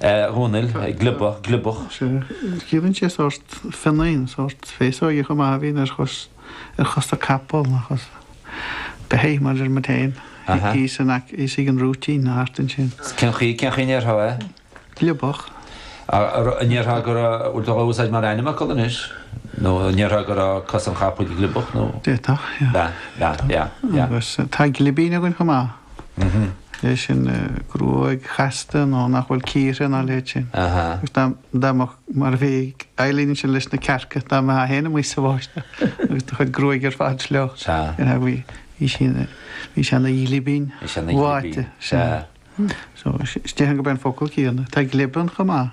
Dhomhnaill, gliobach, gliobach. Ciallaíonn sé sórt fionnáin, sórt féasóige chomh maith a bhíonn ar chos, ar chosa capall nó chosa beithigh mar a deir muid féin, thíos in aice, thíos ag an rúitín nó thart ansin. Cén chaoi, cén chaoi a ndéarfá é? Gliobach. An ndéarfá go raibh, bhfuil tú á úsáid mar ainmfhocal anois? Nó an ndéarfá go raibh cos an chapaill gliobach nó? D'fhéadfadh, yeah. D'fhéadfadh, yeah, yeah, yeah. Agus tá glibín againn chomh maith. É sin gruaig chasta nó nach bhfuil cíortha nó a leithéid sin. Agus dá, dá mbeadh, mar a bhí ag Eileen sin leis na cearca, dá mbeifeá féin amuigh sa bháisteach agus do chuid gruaig ar fad sleabhctha, bhí, bhí sí ina, bhí sí ina glibín, bháite. So, is déarfainn gurb é an focal céanna. Tá glibean chomh maith.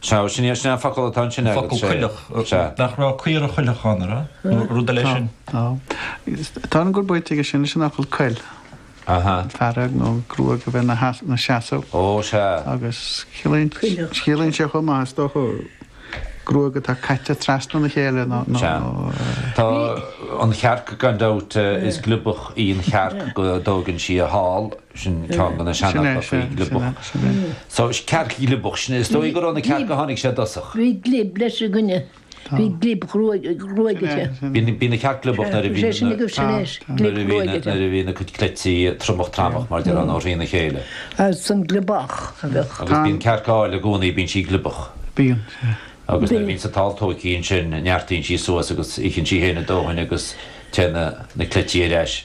Sea, sin é an focal atá ansin agat. An focal cuileach. Sea. Nach raibh caora chuileach ann, an raibh? Nó rud eile sin? Tá. Tá. Tá an gur baint aige sin leis an fhocal cuil. Aha. Fearg nó gruaig a bheith ina seasamh. Ó, sea. Agus ciallaíonn. Cuileach. Ciallaíonn sé chomh maith, is dócha, gruaig atá caite trasna na chéile nó, nó. Sea. Tá an chearc, gan dabht, is gliobach í an chearc go dtógann sí a hál. Sin ceann de na seanfhocail faoi gliobach. So, cearc ghliobach, sin é. Is dóigh gurb ó na cearca a tháinig sé i dtosach. Bhí glib leis i gcoinne. Bhí glib ghruaige. Bhíodh an chearc gliobach nuair a bhí na, nuair a bhí na, nuair a bhí na cuid cleití tromach tramach, mar a deir an, nó thrína chéile. As an ghliobach a bheadh. Agus bíonn cearc áil i gcónaí, bíonn sí gliobach. Bíonn, sea. Agus nuair a bhíonns an t-ál tóigthe ansin, neartaíonn sí suas agus itheann sí féin a dóthain agus téann na cleití ar ais.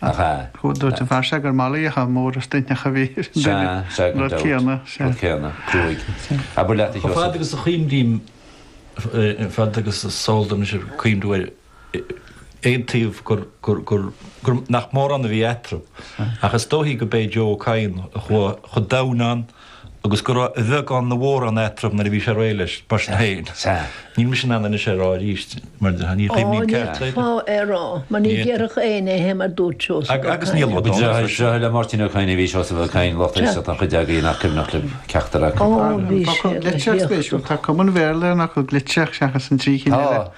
Ach a. Dúirt an fear seo gur malaíocha móra stuithneacha a bhí ar an duine. Sea, sea, Rud céanna. Rud céanna. Gruaig. Abair leat a Sheosaimh. Fad agus a chuimhním, fad agus is eol dom is ag cuimhniú ar aon taobh gur nach mórán a bhí eatarthu, ach is dóichí go b'é Joe Ó Cadhain a chuaigh chomh domhain ann. agus go raibh a bheagán nó a mhórán eatarthu nuair a bhí sé réidh leis, mar sin féin. Níl mise in ann anois é rá arís, mar ní chuimhním ceart é. Ó, níor ghá é rá, mar ní déarfadh éinne é mar dúirt Seosamh Ó Cadhain. Agus níl agat ann anois. Seo le Máirtín Ó Cadhain a bhí Seosamh Ó Cadhain, lucht éisteachta an chuid agaibh nach cuimhneach libh ceachtar acu. Ó, bhí sé ina thaobh. Tá cuma an Bhéarla ar an fhocal gligtseach seachas an trí chinn eile. Tá.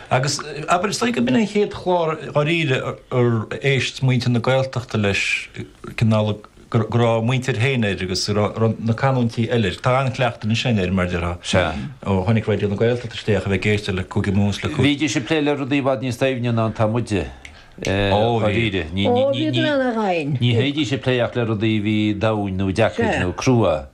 Agus, abair, is dóigh gurb in é an chéad chlár dháiríre ar éist muintir na Gaeltachta leis, cineál go raibh a muintir féin air agus go raibh na canúintí eile air. Tá an-chleachtadh ansin air, mar a déarfá, ó tháinig Raidió na Gaeltachta isteach, a bheith ag éisteacht le Cúige Mumhan is le Cúige. Bhídís ag plé le rudaí i bhfad níos doimhne ná atá muide, dháiríre. Ní bhídís ag plé ach le rudaí a bhí domhain nó deacair nó crua.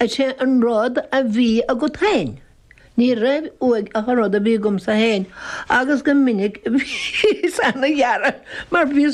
Is é an rud a bhí agat féin. Ní raibh uaidh ach an rud a bhí agamsa féin agus go minic bhíos ana-ghearr mar bhíos